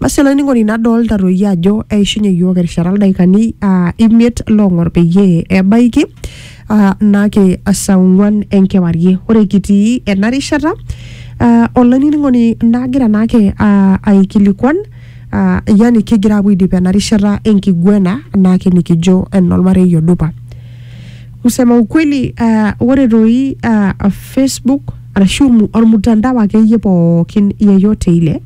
Basi olainining'oni nadolta toi ajo eishunye iyiook erishata ildaikani ah, imiet loong'or peyie ebaiki ah, naake saa ong'uan enkewarie. Ore kitii ena rishata ah, olainining'oni nagira naake ah, aikilikuan ah, yani kigira apuo aidip ena rishata enkiguena naake nikijo enolmarei odupa. Kusema ukweli ah, ore toi ah, Facebook arashu mu- ormutandao akeyie pookin yeyote ile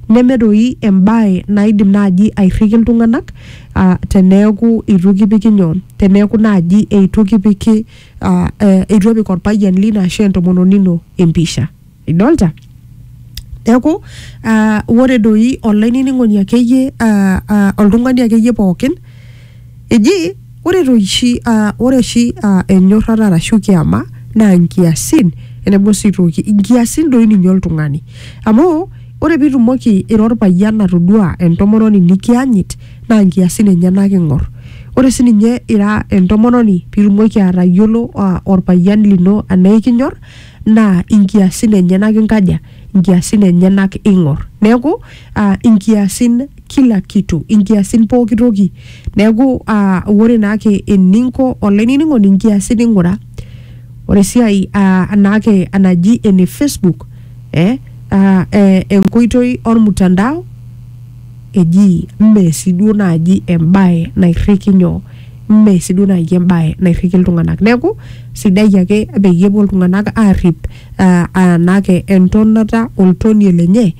Neme doi embae naidim naaji airriki iltung'anak uh, teneeku eitu kipiki nyoo, teneeku naaji eitu kipiki uh, eitu epik orpayian lino ashu entomononi ino empisha. Idolta? Neeku uh, ore doi olainining'oni akeyie uh, uh, oltung'ani akeyie pookin Eji ore toshi uh, ore oshi uh, enyorrata arashu kiama naa nkiasin enebo sii toki nkiasin doi ninye oltung'ani amu ore pitumoki ira orpayian atodua entomononi nikiyanyit naa nkiasin enyenak ing'or ore sininye ira entomononi pitumoki atayiolo uh, orpayian lino anaa ikinyor naa inkiasin enyenak inkaja inkiasin enyenak ing'or neeku uh, inkiasin kila kitu inkiasin pooki toki neeku uh, ore naake eninko olainining'oni inkiasin ing'ura ore esiai uh, naake enaji ene facebook eh, uh, eh, enkoitoi ormutandao eji mme siduo naaji embae nairriki nyoo mme siduo naaji embae nairriki iltung'anak neeku sidai ake peyie epuo iltung'anak aarrip uh, uh, naake entonata oltonie lenye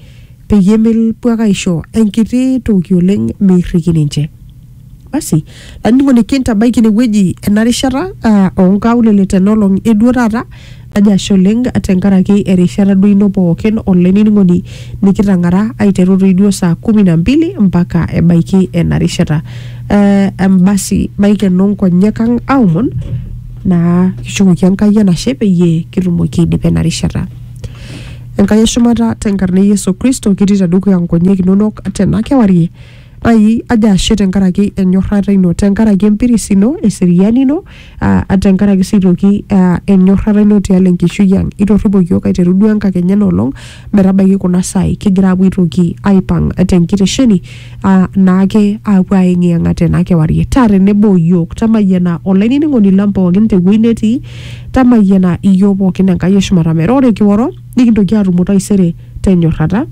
peyie mepuo ake aisho enkiti toki oleng meirriki ninche. Basi, lanining'oni kintabaiki inewueji ena rishata ah, onkaulele tenolong eduo taata, najo ashe oleng tenkaraki erishata duo ino pookin olainining'oni nikitang'ara aiteru toi duo saa kumi na mbili mpaka ebaiki ena rishata. Eh, basi maikeno nkonyek ang aomon naa kishukoki Enkai enashe peyie kitumoki aidipa ena rishata. Enkai e shumata tenkarna e Yesu Kristo kitii tedukuya nkonyek inonok tena kewarie. Ai ajo ashe tenkaraki enyorrata ino, tenkaraki empiris ino, eseriani ino, aa tenkaraki sii toki aa enyorrata ino tialo enkishui ang. Itorripo iyiook aiteru duo enkakenya ena olong metabaiki kuna saai kigira aapuo aitoki aipang tenkitesheni ah, naake aapuo aeng'iyeng'a tena kewarie taa tenebo o yiok tamayiana olainining'oni lang pookin tewueji netii tamayiana iyiok pookin enkai eshumata metaa ore kioro nikintoki aatumo taisere tenyorrata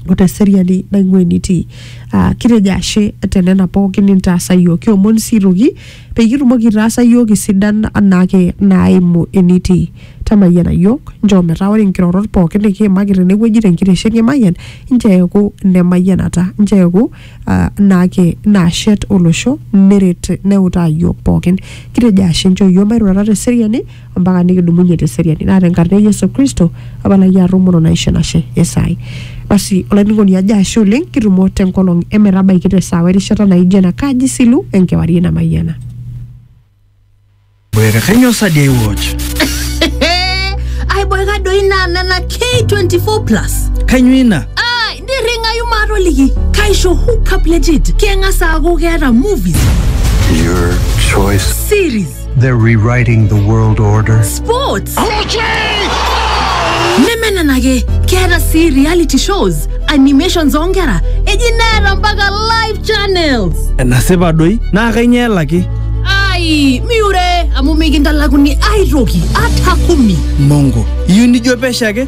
o teseriani naing'ua enitii Ah, kitejo ashe tenena pookin nintaasa yiok kiomon sii toki Peyie itumoki aitaasa iyiook isidan anaake naaimu enitii. Tamayiana iyiook, nchoo metaa ore nkirorot pooki nikiimaki tenewueji tenkitesheni e Mayian nchoo eeku ne mayianata, nchoo eeku uh, naake naashet olosho neret neutaa iyiook pookin. Kitejo ashe nchoo iyiook mairurata te seriani ompaka nikidumunye teseriani naa tenkarna e Yesu Kristo apa lai atumuru naisho enashe esai basi olainining'oni ajo ashe oleng kitumo tenkolong emetabaiki tesaawa erishata naijo ena kaji silu enkewarie namayiana Boyaka kanyo sa day watch? aiboika doi naa nena k24 plus Kanyo ina? ai nirring'ayu maatoliki kaisho hookup legit keng'as aaku keeta movies Your choice. series They're rewriting the world order. Sports! nemenenake keeta sii reality shows animations oonkera eji neeta mpaka live channels enasipa doi naa kainyoo elaki ai miure amu mikintalakuni aitoki ata kumi mongo iyieu nijo pesho ake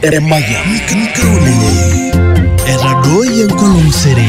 Emayian. Nkaulele. Etadooyie enkolong sere.